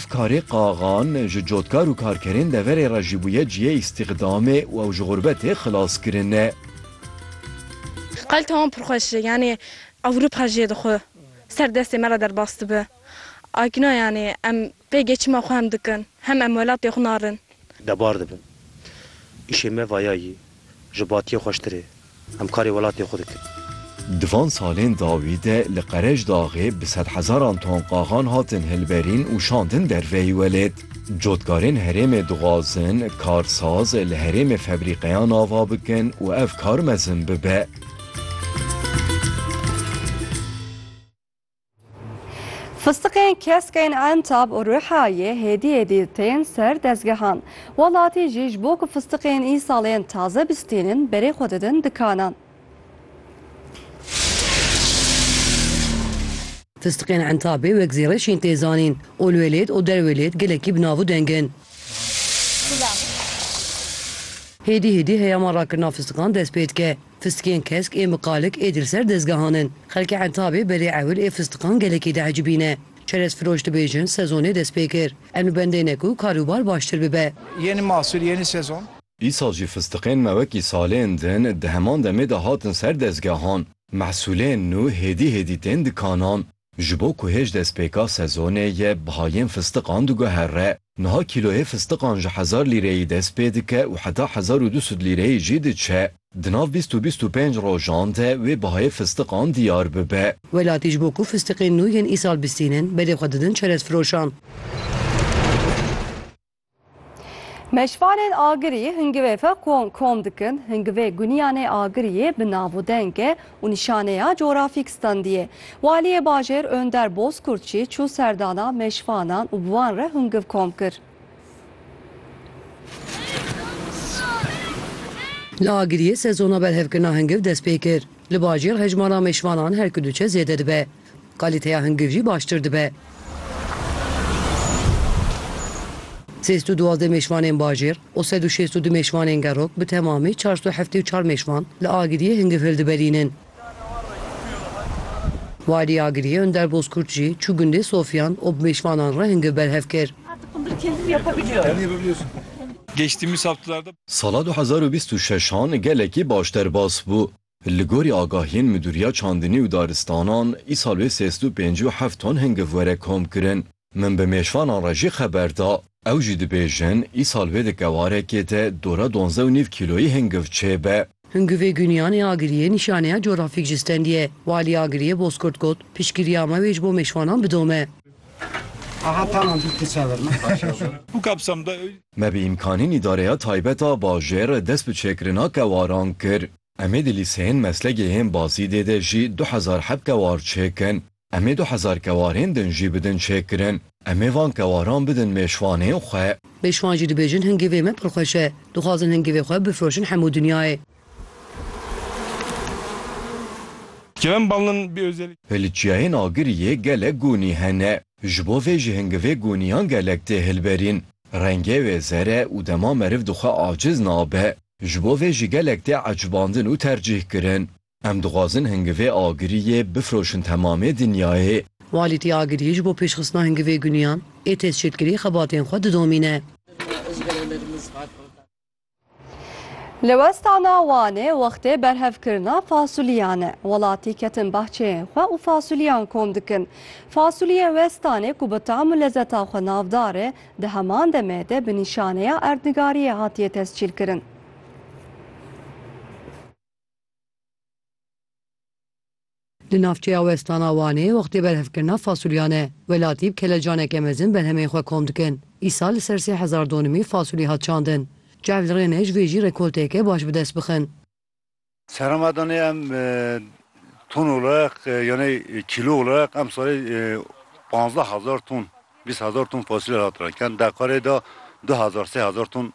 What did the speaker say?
Karê Qaxan ji cotkar û karkerên deverê re jî bûye cihê îstîxdamê û ew ji xurbetê xilas kirine. Qal tewam pir xweş e. Yanî Ewropa jê di xwe ser destê me re derbas dibe. Akina yanî em pê gê çima xwe hem dikin, hem em welatê xwe narin. Debar dibin. Îşê me vaya yî. Ji batiyê xweştir ê. Em karê welatê xwe dikin. Di van salên dawî de li Qereçdaxê bi sedhezaran ton qaxan hatin hilberîn û şandin derveyî welêt. Cotkarên herêmê dixwazin karsaz li herêmê febrîqeyan ava bikin û ev kar mezin bibe. Fistiqên keskên Entab û Rihayê hêdî hêdî tên ser dezgehan. Welatî jî ji bo ku fistiqên îsalên taze bistînin berê xwe didin dikanan. Fistiqên Entabê wek zêreş yên tê zanîn. Olwêlêt û Derwêlêt gelekî bi nav û deng in. Hêdî hêdî heyama rakirina fistiqan dest pê dike. Fistikên kesk ê miqalik ê dir ser dezgehan in. Xelkê Entabê berê ewil ê fistikan gelekî diecibî ne. Çerezfiroş dibêjin sezonê dest pê kir. Em li bendê ne ku karûbar baştir bibe. Yeni mahsul, yeni sezon. Îsal jî fistiqên me wekî salên din di heman demê de hatin ser dezgehan. Mehsulên nû hêdî hêdî tên dikanan. Ji bo ku hêj destpêka sezonê yê bihayên fistiqan diguhere. Niha kîloyê fistiqan ji hezar lîreyî dest pê dike û heta hezar û du sed lîreyî jî diçe. Di nav bîst û bîst û pênc rojan de wê bihayê fistiqan diyar bibe. Welatî ji bo ku fistiqên nû yên îsal bistînin, berê xwe didin çerezfiroşan. Meşvanên agirî hingivê fe kom kom dikin, hingivê guniyanê agiriyê bi nav û denge û nîşaneya corafîk standiyê. Waliyê bajêr Önder Bozkurt jî çû serdana meşvanan û bi wan re hingiv kom kir. Li agiriyê sezona berhevkirina hingiv dest pê kir. Li bajêr hejmara meşvanan her ku diçe zêde dibe. Kalîteya hingiv jî baştir dibe. Sêst û duwazdeh mêşvanên bajêr û sed û şêst û du mêşvanên gerok bi temamî çar sed û heftê û çar mêşvan li Agiriyê hingiv hildiberînin. Walî Agiriyê Önder Bozkurt jî çû gundê Sofyan û bi mêşvanan re hingiv berhev kir. Sala du hezar û bîst û şeşan gelekî baş derbas bû. Li gorî agahiyên Midûriya Çandinî û Daristanan, îsal wê sês du pêncî û heft ton hingiv were komkirin. Min bi mêşvanan re jî xeber da. Ew jî dibêjin, îsal wê di kewarekê de dora duanzdeh û nîv kîloyî hingiv çêbe. Hingivê Guniyan ê Agiriyê nîşaneya coğrafîk ji stendî ye. Walî Agiriyê Bozkurt got, Piştgiriya me wê ji bo mêşvanan bidome. Me bi îmkanên îdareya taybet a bajêr dest bi çêkirina kewaran kir. Em ê di lîseyên meslekê yên Bazîdê de jî du hezar heb kewar çêkin. Em ê du hezar kewarên din jî bidin çêkirin. Em ê van kewaran bidin mêşvanên xwe. Mêşvan jî dibêjin hingîvê me pir xweş e. Dixwazin hingîvê xwe bifroşin hemû dinyayê. Kerem Bal'nın bir özelliği. Piliçiyayên agiriyê gelek gunî hene. Ji bo vê jî hingivê goniyan gelek tê hilberîn. Rengê wê zer e û dema meriv dixwe aciz nabe. Ji bo vê jî gelek tê ecbandin û tercîh kirin. Em dixwazin hingivê agirî yê bifroşin temamê dinyayê. Walî tê agirî ji bo pêşxistina hingivê goniyan ê têzçêkirî xebatên xwe didomîne. Li westana Wanê wextê berhevkirina fasulîyan e. Welatî ketin bahçeyên xwe û fasulîyan kom dikin. Fasulîyê westanê ku bi tam û lezeta xwe navdar e, di heman demê de bi nîşaneya erdnigariyê hatiye tescîlkirin. Li navçeya westana Wanê wextê berhevkirina fasulyan e. Welatî bi kelecaneke mezin berhemên xwe kom dikin. Îsal li ser sê hezar donimî fasulî hat çandin. Çav li rê ne ji vê jî rekolteyeke baş bi dest bixin. Serra madanê em ton olarak yanî kîlo olarak em salê panzdeh hezar ton, bîst hezar ton fasulye hat renken. Deqarê de du hezar sê hezar ton